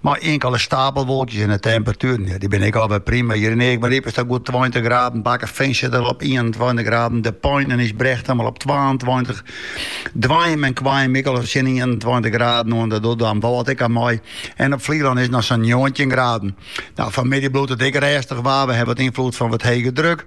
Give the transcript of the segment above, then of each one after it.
Mei inkele stapelwolkjes en de temperatueren, ja, dy binne ek alwer prima. Hjir yn Eagmaryp is dat goed tweintich graden. Bakkefean sit al op ienentweintich graden. De Pein en Ysbrechtum al op twaentweintich. Doanjum en Koarnjum ek al tsjin ienentweintich graden oan. Dat docht Damwâld ek oan mei. En op Flylân is noch sa'n njoggentjin graden. No, fanmiddei bliuwt it ek rêstich waar. We hawwe wat ynfloed fan wat hege druk.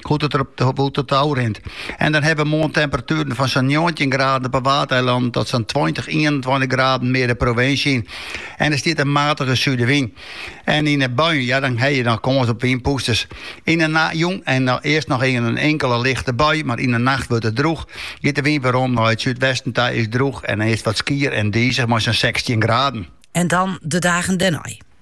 hoe't it der op rint. En dan hawwe we moarn temperatueren fan sa'n njoggentjin graden op 'e Waadeilannen tot sa'n tweintich, ienentweintich graden mear de provinsje yn. En der stiet in matige súdewyn. En yn de buien, ja, dan hawwe je noch kâns op wynpûsters. Yn de nacht, jûn en earst noch even in inkele lichte bui, mar yn de nacht wurdt it drûch. Giet de wyn werom nei it súdwesten ta, is drûch en dan is it wat skier en dizich mei sa'n sechstjin graden. En dan de dagen dêrnei.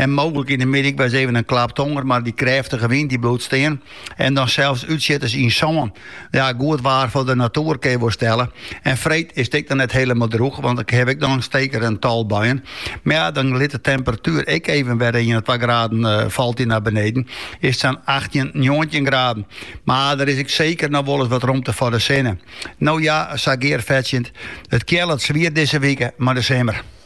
En mooglik yn de middei ek wol ris even in klap tonger, mar dy krêftige wyn dy bliuwt stean. En dan sels útsjitters yn sân. Ja, goed waar foar de natoer kin je wol stelle. En freed is it ek dan net hielendal drûch, want ik haw ek dan seker in tal buien. Mar ja, dan lit de temperatuer ek even wer ien of twa graden falt dy nei beneden. Is it sa'n achttjin, njoggentjin graden. Mar der is ek seker noch wol ris wat romte foar de sinne. No ja, sa gearfetsjend, it keallet swier dizze wike, mar de simmer.